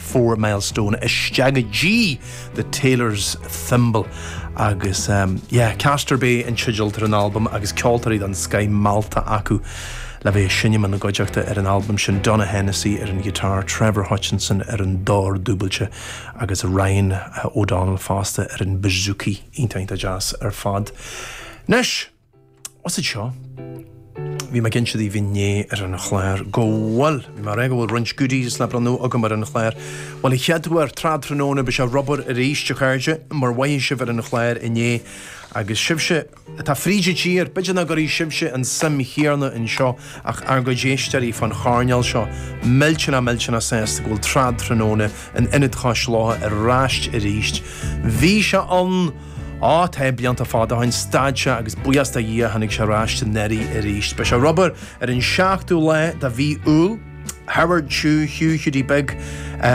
Fourmilehouse, isteach i dtaobh, The Tailor's Thimble, agus yeah, Keane's Bay an teideal atá ar an albam agus ceoltóirí den scoith meallta acu le bheith ag seinm ina gcuideachta ar an albam sin, Donogh Hennessy ar an ghiotár, Trevor Hutchinson ar an dord dúbailte agus Ryan O'Donnell fosta ar an bouzouki. Iontach, iontach deas ar fad. Anois. Goitse anseo? Bhí mé ag inse daoibh inné ar an chlár go bhfuil bhí mar é go bhfuil roinnt goodies le bronnadh agam ar an chlár. Bhuel, ar an chéad dul síos, Trad Tráthnóna, beidh sé ar obair arís, a chairde, mar a mhoithigh sibh ar an chlár inné agus sibhse atá fríd an tír, b'fhéidir nach raibh sibhse, an suim chéanna anseo ach ár gcuid éisteoirí fán choirnéal seo, millteanach millteanach sásta go bhfuil Trad Tráthnóna in Ionad Cois Locha ar ais arís. Bhí sé an. Ó, tá blianta fada ó shin, stad sé agus buíochas do Dhia tháinig sé ar ais anuraidh arís. Beidh sé ar obair ar an 7ú lá de mhí Iúil. Howard Chu, Hugh Hiúdaí Big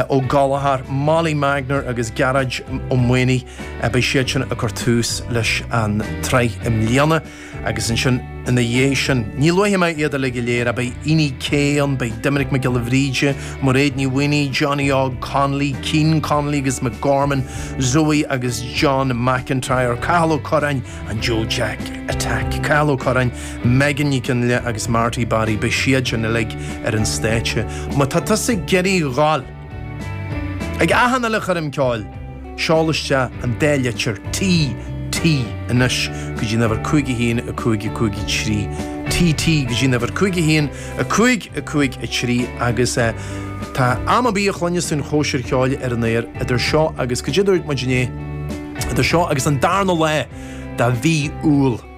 Ó Gallchóir, Molly Magner agus Gearóid Ó Maonaigh, beidh siad sin ag cur tús leis an tsraith i mbliana. Agus ansin ina dhiaidh sin, ní luafaidh mé iad uilig go léir, beidh Éanna Ó Céin, beidh Doimnic Mac Giolla Bhríde, Mairéad Ní Mhaonaigh, Johnny Óg Connolly, Cliodhna Costello agus Pádraig Ó Dubhghaill, Zoe agus John McIntyre, Cathal Ó Curráin, an Joe Jack Attack, Cathal Ó Curráin, Megan Nic Fhionnghaile agus Marty Barry, beidh siad sin uilig ar an stáitse. Má tá tusa ag iarraidh a ghabháil. Chuig achan uile choirm ceoil, seol isteach an dá litir T, T, anois go dtí an uimhir 51 1553, T, T, go dtí an uimhir 5115 53, agus tá muid ag gabháil a bheith ag cluinstin an chóisir cheoil ar an aer idir seo agus, caidé a dúirt muid inné, idir seo agus an darna lá de mhí Iúil.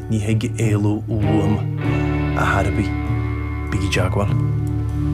Ní thig éalú uaim ar ndóigh. Bígí i dteagmháil.